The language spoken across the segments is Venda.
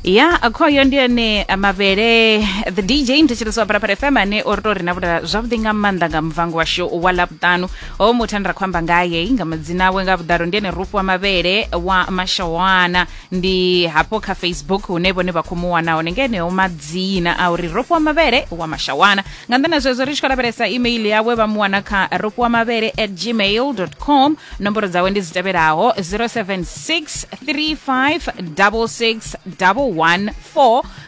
ya akhoyo ndi ane mavhele the dj mthetshelesi wa parapara fm ane o ri to rina vhula zwavhuḓi nga maanḓa nga muvango washu wa ḽavhuṱanu o muthu ane ra khou amba ngaye nga madzina awe nga vhuḓalo ndi ene rufu wa mavhele wa mashawana ndi hafho kha facebook hune vhone vha khou mu wana hone nga eneo madzina a uri rufu wa mavhele wa mashawana nga nnḓa na zwezwo ri tshi khou lavhelesa email yawe vha mu wana kha ro fhiwa mavhele at gmail com nomboro dzawe ndi dzi tevhelaho 076 35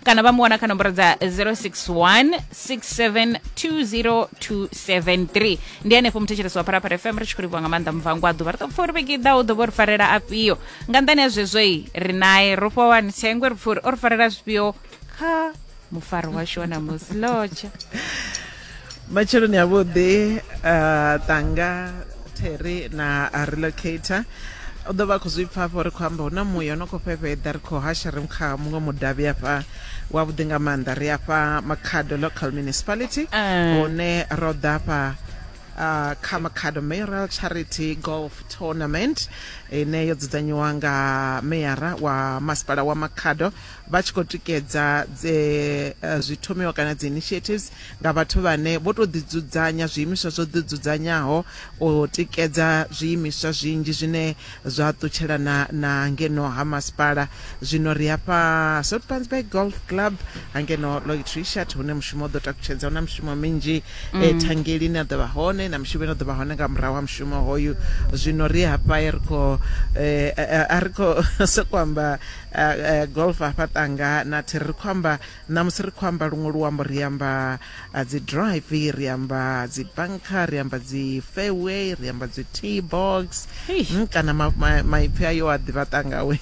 kana vha mu wana kha nomboro dza 061 6720273 ndi henefho muthetshelesi wa pharapara fm ri tshi khou livhiwa nga maanḓa muvhango a ḓuvha ri ḓo pfa uri vhege iḓaho ḓo vho ri farela afhio nga nḓani ya zwezwoi ri naye ro fhiwa wani thengwe ri pfa uri o ri farela zwifhio ha mufari washu wa ṋamusi lotsha matsheloni avhuḓi uh, tanga terry na relocator u ḓo vha khou zwi pfa afho ri khou amba hu na muya no khou fhefheḓa ri khou hasha ri kha muṅwe mudavhi afha wavhuḓi nga maanḓa ri afha makhado local municipality eh. hune ro ḓa afha uh, kha makhado mayoral charity golf tournament ine yo dzudzanyiwa nga meyara wa masipala wa makhado vha tshi khou tikedza dze eh, zwi thomiwa kana dzi initiatives nga vhathu vhane vho tou ḓidzudzanya zwiimiswa zwo ḓidzudzanyaho u tikedza zwiimiswa zwinzhi zwine zwa ṱutshelana na ngeno ha masipala zwino ri hafha sotpansburg golf club hangeno lloyd richard hune mushumo u ḓo takutshedza hu na mishumo minzhi mm. eh, thangeli ine a ḓo vha hone na mishumo ine a ḓo vha hone nga murahu ha mushumo hoyu zwino ri hafha ri khou eh, eh, a ri khou sokou amba Uh, golf hafha tanga na thi ri khou amba ṋamusi ri khou amba luṅwe luambo ri amba uh, dzi drive ri amba dzi banka ri amba dzi fairway ri amba dzi t box mm, kana maipfi ma, ma ayo a ḓivha tangawe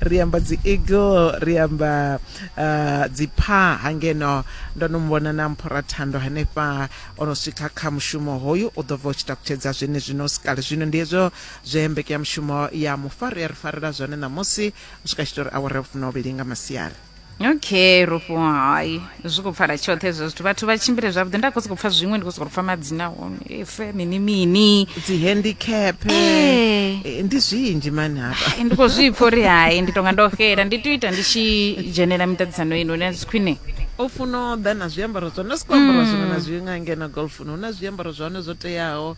ri amba dzi eagle ri amba uh, dzi pha hangeno ndo no muvhona na mphora thando hanefha o no swika kha mushumo hoyu u ḓo bva u tshi takutshedza zwenezwino sikale zwino ndi hezwo Zwe mbekeyamushumo ya mufari ya ri farela zwone ṋamusi u swika tshitori awara ya vhufunauvhili nga masiari okay rufho hai zwi khou pfala tshoṱhe hezwo zwithu vhathu vha tshimbile zwavhuḓi nda khou sokou pfa zwiṅwe ndi khou sokou pfa madzina hone efe mini mini dzihandicap eh. eh, ndi zwinzhi mani hafha ndi khou zwi pfa uri hai ndi tonga ndo xela ndi tea u ita ndi tshi dzhenela miṱaṱisano ino ine zwi khwine o funa o ḓa na zwiambaro zwa hone si khou ambara zwone na mm. zwi nga ngena golfuni hu na zwiambaro zwa hone zwo teaho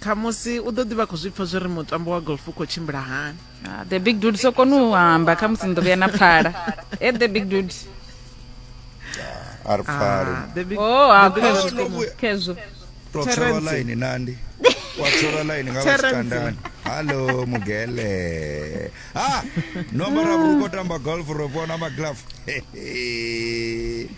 Khamusi u ḓo ḓi vha khou zwi pfa zwo ri mutambo wa golf u khou tshimbila hani. Ah, the big dude so kona u amba khamusi ni ḓo vhuya na pfala. E the big dude. a ri pfali Ah, the big- Oh, ha the big khezwo. dude komo. Khezwo. to tshelwa Terence. line nandi wa tshelwa line nga Terence. vhasikandani hallo mugele ha nombara vhukho tamba golf ro vhona maglove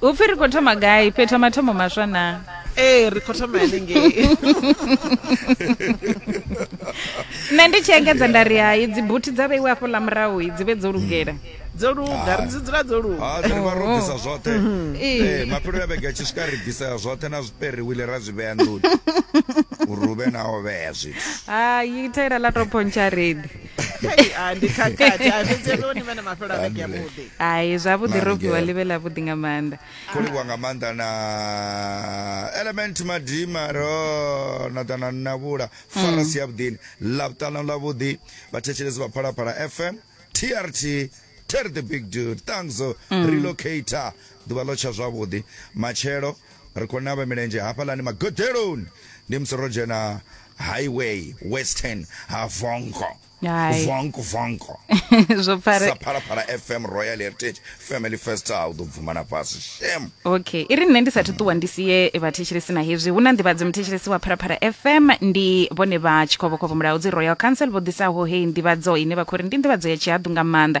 u pfi ri khou thoma gai fhetha mathomo maswa naa ee ri khou thoma hanengei nṋe ndi tshi engedza nda ri hai dzibuthi dza vheiwe afho ḽa murahu dzi vhe dzo lugela dzo luga ri dzi dzula dzo luga ah, ri vha ro bvisa zwoṱhe mm-hmm. eh, mafhelo ya vhege tshi swika ri bvisa zwoṱhe na zwiperiwile ra zwi vhea nḓuni uri u vhe na o vhea zwithu hai thaila ḽa tou pontsha redi Hei, ah, ndi khakhathi Ah, fhedzi hezwo ni vha na mafhelo a vhege yavhuḓi hai zwavhuḓi Mara ro fhiwa ngeo. ḽi vhe ḽavhuḓi nga maanḓa khou livhuwa nga maanḓa na element madima ro na ḓa na navhula farasi ya vhuḓini ḽa vhuṱanu ḽa vhuḓi vhathetshelesi vha phalaphala fm trt ter the big dude thanks relocator ḓuvha ḽo tsha zwavhuḓi matshelo Ri khou navha milenzhe hafhaḽani magoḓeloni ndi musi ro dzhena highway western ha vongo vongo vongo zwo pfare sa phalaphala fm royal heritage family first a u ḓo bvuma na fhasi shem okay i ri nṋe ndi sathu ṱuwa ndi sie vhathetshelesi na hezwi hu na nḓivhadzo muthetshelesi wa phalaphala fm ndi vhone vha tshikhovhokhovho mulaudzi royal council vho ḓisaho heyi nḓivhadzo ine vha khou ri ndi nḓivhadzo ya tshihaḓu nga maanḓa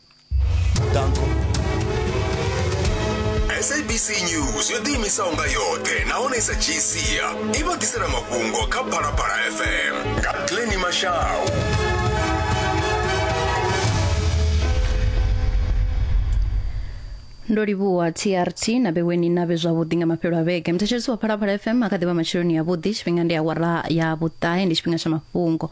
Danko. sabc news yo ḓiimisaho nga yoṱhe nahone i sa dzhii sia i vha ḓisela mafhungo kha phalaphala fm nga pleni mashau ndo livhuwa trt na vheweni na vhe zwavhuḓi nga mafhelo a vhege muthetshelesi wa phalaphala fm a kha ḓivha matsheloni yavhuḓi tshifhinga ndi awara ya vhuṱahe ndi tshifhinga tsha mafhungo